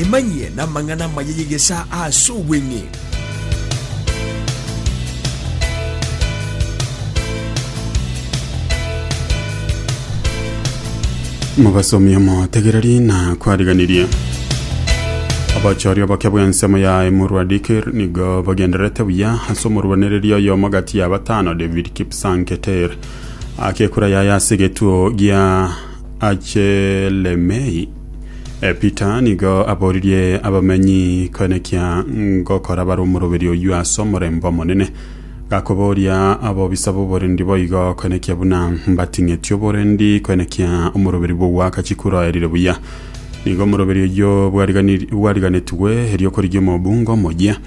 Emanyie namang'ana amaya y'egesaa aase obweng'e. mobasomi omotegereri na kwariganirie abachori oboke bw'ensemo yaye morwa dikir nigo bagendererete buya ase omorwanereri oyomo gati ya batano david kipsanketer akekura yaye ase egetuo gia Achelemei. E, Peter nigo aboririe abamenyi koenekia ngokora bare omoroberi oyio ase omorembe omonene, gakoboria abobisa b'oborendi boigo koenekia buna mbating'eti oborendi koenekia omoroberi bw'ogwakachi kuraoerire buya. Nigo omoroberi oyio bwariganiri- bwariganetigwe erio korigia omobunga omoyia.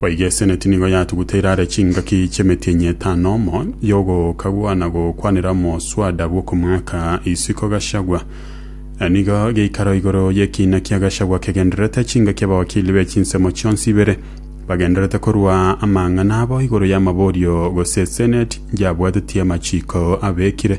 Boigo eseneti nigo yatuguteire are chingaki chi'emetienyi etano, omo y'ogokagwa na gokwanera omoswada bw'okomoaka isiko Gachagua. Nigo geikaro igoro y'ekiina kia Gachagua kegendererete chingaki abawakili be chinsemo chionsi ibere bagendererete korua amang'ana abo igoro y'amaborio gose eseneti yabwatetie amachiko abekire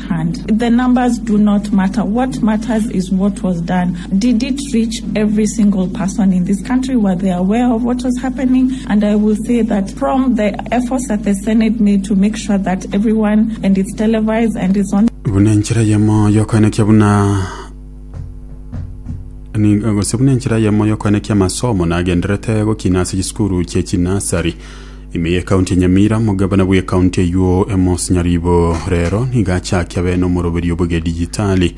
Buna enchera eyemo y'okoenekia buna nigo gose buna enchera eyemo y'okoenekia amasomo nagendererete gokina ase chisukuru chie chinasari. Ime y'Ekaunti ya Nyamira, Omogabana bw'Ekaunti eywo Amos Nyaribo rero nigo achakia bene omoroberio bw'egedijitali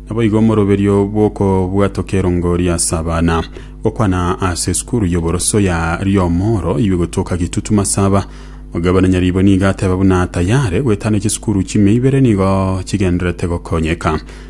naboigo omoroberio bw'okobwatoka erongoria ase abana gokwana ase esukuru y'oboroso ya Riomoro iywe gotoka Kitutu Masaba. Omogabana Nyaribo nigo ateba buna tayare goetana chisukuru chime ibere nigo chigendererete gokonyeka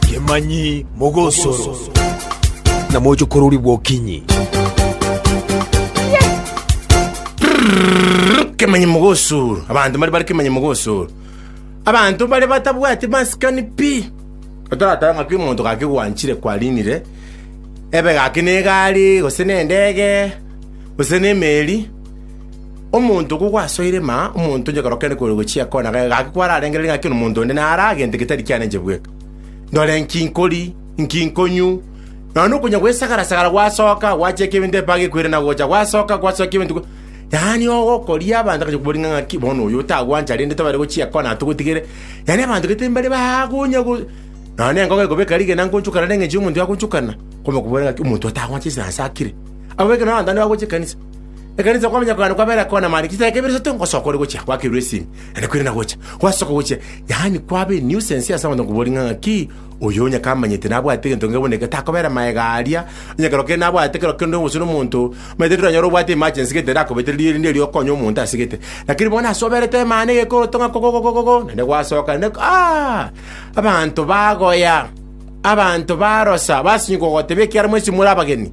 Kemanyi mogosoro, na moche korori bwokinyi. kemanyi mogosoro abanto mbare bare kemanyi mogosoro abanto bare batabwati masikani pi otoratore ng'aki omonto gaki gwanchire kwarinire ebe gaki ne egari gose ne endege gose ne emeri Omonto okwo gwasoire, ma omonto onye korokende kore gochia kona, gaki kwararengereri ng'aki nomonto onde nare agente getari kianenche bweka. Ndore inki nkori, inki nkonywu, nonya nokonya gwesagara-sagara gwasoka, gwacheka ebinto epaga ekwire na gocha, gwasoka, gwasoka ebinto, gwa- yaani ogokoria abanto agacha kobori ng'a ng'aki bono oyo otagwancha rende tobare gochia kona atogotigere, yaani abanto gete mbare bagonya go nonya na engogo ekobeka rigena ngonchokana neng'encho y'omonto yagonchokana, kwamanya kobora ng'aki omonto otagwancha ase nase akire. Abwo ekero abanto bande bagocha ekanisa. Ekanisa y'okwamanya kwane kwabera ekona amare chisae ekeberio isato ngosoka ore gochia gwakerwa esimi, naende kwirana gocha gwasoka gochia, yaani kwaba enuisance ase abanto ngoboria ng'a ng'aki oyo onye kamanyete nabwate egento kenge buna eke takobera maega aria, onye kero kende nabwate kero kende gose nomonto, omanyete ekero okonyora obwate emergency gete erakobetereria erinde erio okonye omonto ase gete. Lakini bono ase oberete emana egekoroto ng'a kogogogogogo naende gwasoka naende aah! Abanto bagoya, abanto barosa, basinywa kogotebia ekiara mwensi more abageni.